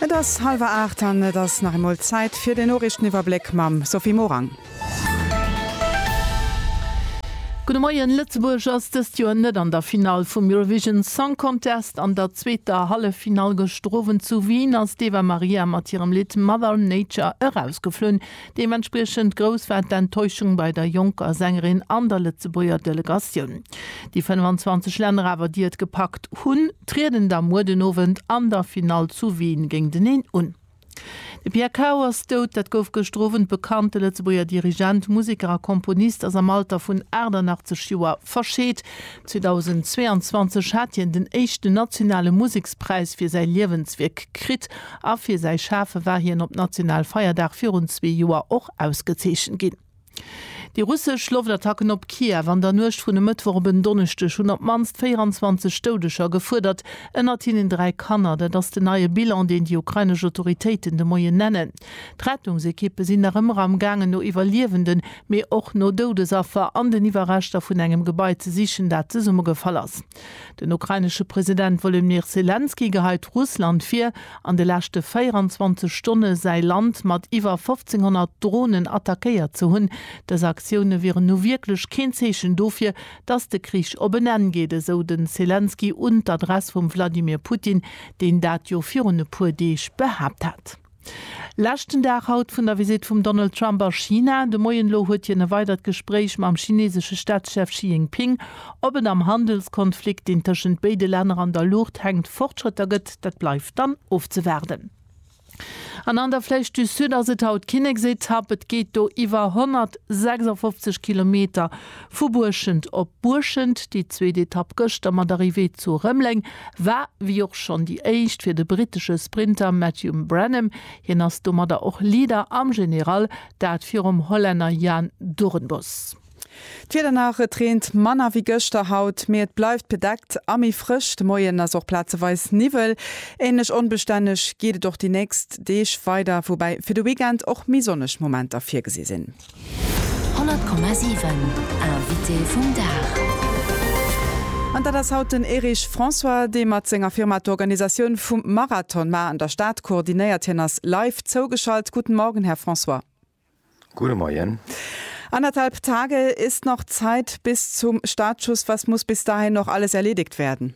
Et ass hallwer aacht an et ass nach eemol Zäit fir den Noriichteniwwerbléck mam Sophie Morang. Gudde Moien, Lëtzebuerg ass dëst Joer net an der Finall vum Eurovision Song Contest. An der zweeter Halleffinall gëschter Owend zu Wien ass d'Eva Maria mat hirem Lidd Mother Nature erausgeflunn. Deementspriechend grouss war d'Enttäuschung bei der jonker Sängerin an der Lëtzebuerger Delegatioun. Déi 25 Länner awer, déi et gepackt hunn, trieden da muer den Owend an der Finall zu Wien géinteneen un. De Pierre Cao ass dout, dat gouf gëschter Owend bekannt. De Lëtzebuerger Dirigent, Museker a Komponist ass am Alter vun 88 Joer verscheet. 2022 hat hien den éischten nationale Musekspräis fir säi Liewenswierk kritt a fir säi Schafe war hien op national Feierdag virun zwee Joer och ausgezeechent ginn. Déi russesch Loftattacken op Kiew an der Nuecht vun e Mëttwoch op en Donneschdeg hunn op d'mannst 24 Doudeger gefuerdert, ënnert hinnen dräi Kanner. Dat ass den neie Bilan, deen déi ukrainesch Autoritéiten de Moien nennen. D'Rettungsekippe sinn nach ëmmer am gaangen no Iwwerliewenden, mee och no Doudesaffer an den Iwwerreschter vun engem Gebai ze sichen, dat zesummegefall ass. Den ukrainesche President Wolodmyr Selenskyj geheit Russland vir, an de leschte 24 Stonne säi Land mat iwwer 1.500 Dronen attackéiert ze hunn. Dës Aktioune wieren nu wierklech keen Zeechen dofir, datt de Krich op en Enn geet, esou de Selenskyj un d'Adress vum Wladimir Putin, deen dat jo virun e puer Deeg behaapt hat. Leschten Dag haut vun der Visitt vum Donald Trump a China. De Moien elo huet hien e weidert Gespréich mam chinesesche Staatschef Xi Jinping. Ob et am Handelskonflikt, deen tëschent béide Länner an der Luucht hänkt, Fortschrëtter gëtt, dat bleift dann ofzewaarden. An an der Flèche du Sud ass et haut Kinneksetapp. Et geet do iwwer 156 Kilometer Vu Buerschent op Buerschent, déi zweet Etapp gëschter mat Arrivée zu Rëmleng, war wéi och schonn déi éischt fir de brittesche Sprinter Matthew Brenham. Hien ass domadder och Leader am General, dat virum Hollänner Jan Doornbos. D'Wieder nach, Et reent manner wéi gëschter haut, mee et bleift bedeckt a méi frësch. De Moien ass och plazeweis Niwwel. Änlech onbestänneg geet et och déi nächst Deeg weider, woubäi fir de Weekend och méi sonneg Momenter virgesi sinn. 100,7 Invité vum Dag. An dat ass haut den Erich François, dee mat senger Firma d'Organisatioun vum Marathon mar an der Stad koordinéiert. Hien ass live zougeschalt. Guten Morgen, Här François. Gute Moien. Anderthalb Tage ist noch Zeit bis zum Startschuss. Was muss bis dahin noch alles erledigt werden?